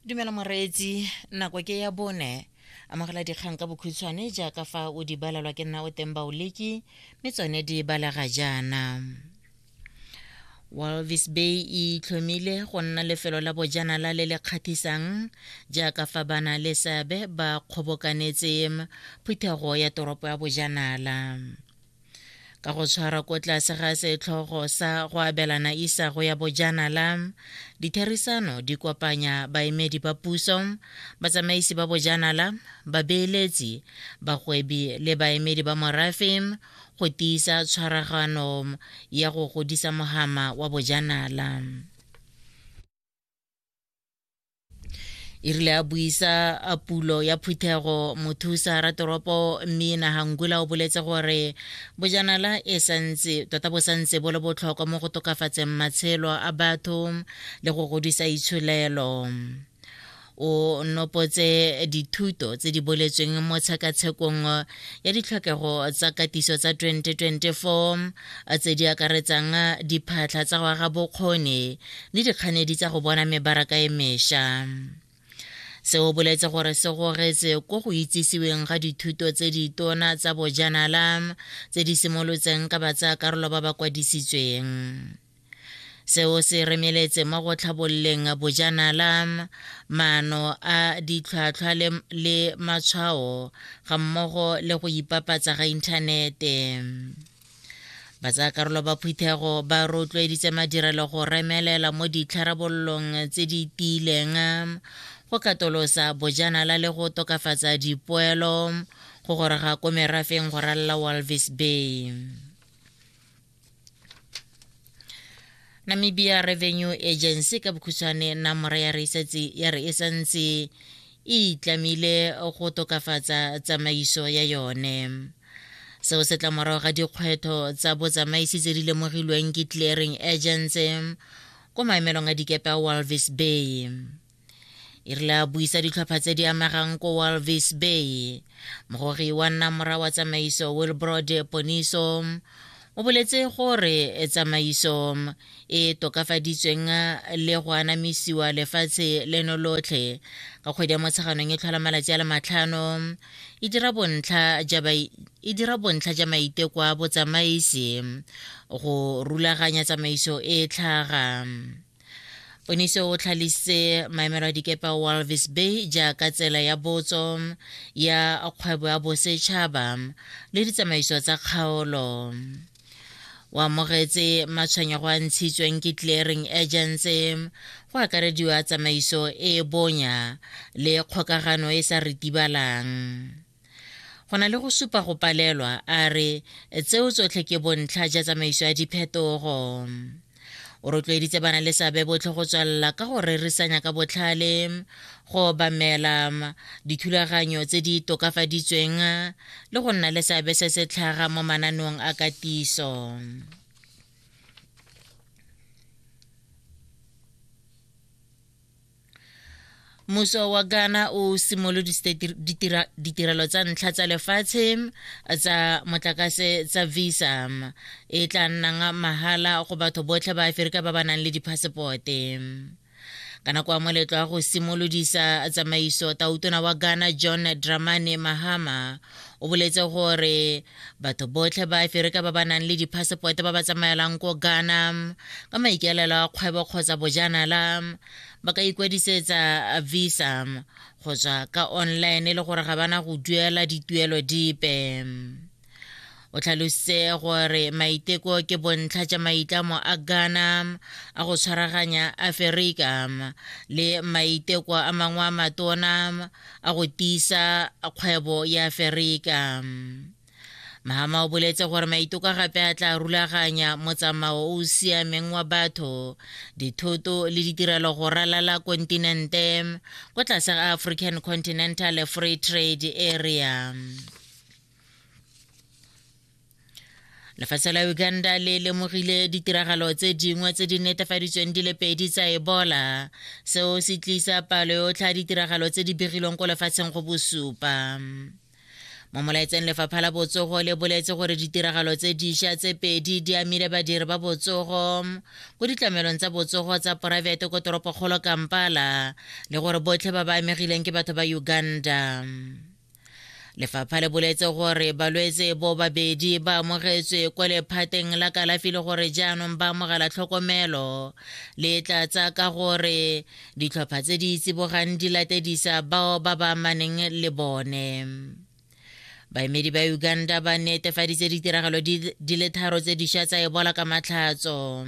dumela moreetsi nako ke ya bone amogela dikgang ka bokhutshwane jaaka fa o di balelwa ke nna o teng baoleki mme tsone di balega jaana walvis bay e itlhomile go nna lefelo la bojanala le le kgathisang jaaka fa bana le seabe ba kgobokanetse phuthego ya toropo ya bojanala ka go tshwara ko tlase ga setlhogo sa go abelana isago ya bojanala ditherisano di kopanya baemedi ba puso batsamaisi ba bojanala babeeletsi bagwebi le baemedi ba morafe go tiisa tshwaragano ya go godisa mohama wa bojanala e rile a buisa a pulo ya phuthego mothusa ratoropo mmina hangula o boletse gore bojanala e santse tota bo santse bo le botlhokwa mo go tokafatseng matshelo a batho le go godisa itsholelo o nopotse dithuto tse di boletsweng mo tshekatshekong ya ditlhokego tsa katiso tsa 2024 tse di akaretsang diphatlha tsa go aga bokgoni le dikganedi tsa go bona mebaraka e mesha se o boletse gore se gogetse ko go itsisiweng ga dithuto tse ditona tsa bojanala tse di simolotseng ka batsayakarolo ba ba kwadisitsweng seo se remeletse mo go tlhabololeng bojanala maano a ditlhwatlhwa le matshwao ga mmogo le go ipapatsa ga inthanete batsaakarolo ba phuthego ba rotloeditse madirelo go remelela mo ditlharabololong tse di tiileng go katolosa bojanala le go tokafatsa dipoelo go gorega ko merafeng go ralla walvis bay namibia revenue agency ka bokhutshwane namora ya re ya re e santse e itlamile go tokafatsa tsamaiso ya yone seo se tla morago ga dikgwetho tsa botsamaisi tse di lemogilweng ke clearing agents ko maemelong a dikepe a walvis bay e rile a buisa ditlhopha tse di amegang ko walvis bay mogogi wa nna mora wa tsamaiso wilbrod poniso o boletse gore tsamaiso e tokafaditsweng le go anamisiwa lefatshe leno lotlhe ka kgwedi ya motsheganong e tlhola malatsi a le matlhano e dira bontlha e ja maiteko a botsamaisi go rulaganya tsamaiso e tlhaga Oniso o tlhalisitse maemelo a dikepe a Walvis Bay jaaka tsela ya botso ya kgwebo ya bosetšhaba le ditsamaiso tsa kgaolo o amogetse matshwenyego a ntshitsweng ke clearing agency go akarediwa tsamaiso e e bonya le kgokagano e sa ritibalang go na le go supa go palelwa a re tseo tsotlhe ke bontlha ja tsamaiso ya diphetogo o rotloeditse bana le seabe botlhe go tswelela ka go rerisanya ka botlhale go obamela dithulaganyo tse di tokafaditsweng le go nna le seabe se se tlhaga mo mananeong a katiso Muso wa Ghana o simolodisitse ditirelo tsa ntlha tsa lefatshe tsa motlakase tsa visa e tla nnang mahala go batho botlhe ba Aferika ba ba nang le diphasepote ka nako ya moletlo wa go simolodisa tsamaiso tautona wa Ghana John Dramani Mahama o boletse gore Batho botlhe ba Aferika ba ba nang le diphasepote ba ba tsamaelang ko Ghana ka maikaelelo a kgwebo kgotsa bojanala ba ka ikwadisetsa visa go tswa ka online e le gore ga bana go duela dituelo dipe. O tlhalositse gore maiteko ke bontlha ja maitlamo a Ghana a go tshwaraganya Aferika le maiteko a mangwe a matona a go tiisa kgwebo ya Aferika. Mahama o boletse gore maitoka gape a tla rulaganya motsamao o o siameng wa batho, dithoto le ditirelo go ralala kontinente ko tlase ga African Continental Free Trade Area. lefatshe la uganda le lemogile ditiragalo tse dingwe tse di netefaditsweng di le pedi tsa ebola seo se tlisa palo yotlhe ya ditiragalo tse di begilweng ko lefatsheng go bosupa mo molaetseng lefapha la botsogo le boletse gore ditiragalo tse diša tse pedi di amile badiri ba botsogo ko ditlamelong tsa botsogo tsa poraefete ko toropokgolo kampala le gore botlhe ba ba amegileng ke batho ba uganda lefapha le boletse gore balwetse bo babedi ba amogetswe kwa lephateng la kalafi le gore jaanong ba amogela tlhokomelo le tlatsa ka gore ditlhopha tse di tsibogang di latedisa bao ba ba amaneng le bone baemedi ba uganda ba netefaditse ditiragalo di le tharo tse dišwa tsa ebola ka matlhatso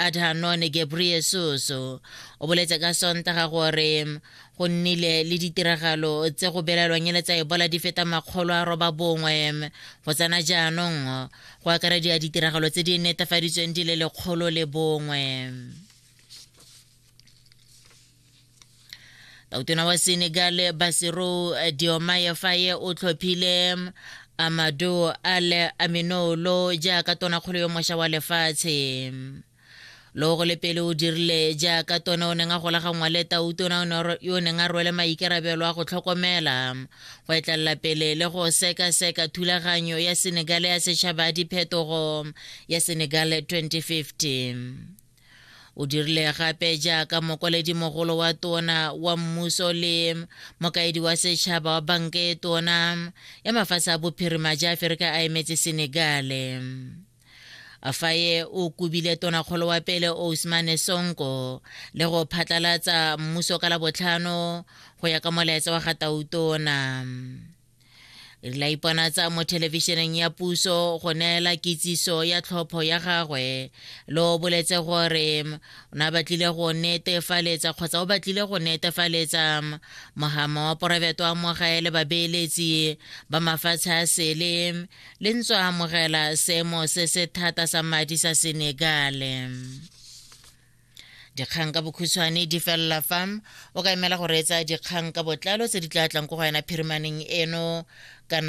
Adhanon Ghebreyesus o boletse ka Sontaga gore go nnile le ditiragalo tse go belaelwang ele tsa ebola di feta makgolo a roba bongwe go tsena jaanong go akarediwa ditiragalo tse di netefaditsweng di le lekgolo le bongwe tautona wa senegal basiro diomaye faye o tlhophile amado ale aminolo jaaka tonakgolo yo mošwa wa lefatshe lo go le pele o dirile jaaka tona o neng a golaganngwa le tautona yo o neng a rwele maikarabelo a go tlhokomela go etlelela pele le go sekaseka thulaganyo ya senegale ya setšhaba ya diphetogo ya senegale 2050 o dirile gape jaaka mogolo wa tona wa mmuso le mokaedi wa setšhaba wa banka e tona ya mafatshe a bophirima ja aferika a emetse senegale afaye o kobile tonakgolo wa pele ousmane sonko le go phatlalatsa mmuso ka labotlhano go ya ka molaetsa wa gatautona re la ipona tsa mo thelebišeneng ya puso go neela kitsiso ya tlhopho ya gagwe le o boletse gore o ne a batlile go netefaletsa kgotsa o batlile go netefaletsa mogama wa porabeto wa mogae le babeeletsi ba mafatshe a sele le ntso a amogela seemo se se thata sa madi sa senegale dikgang ka bokhutshwane di felela fa o ka emela go reetsa dikgang ka botlalo tse di tla tlang ko go wena phirimaneng eno kana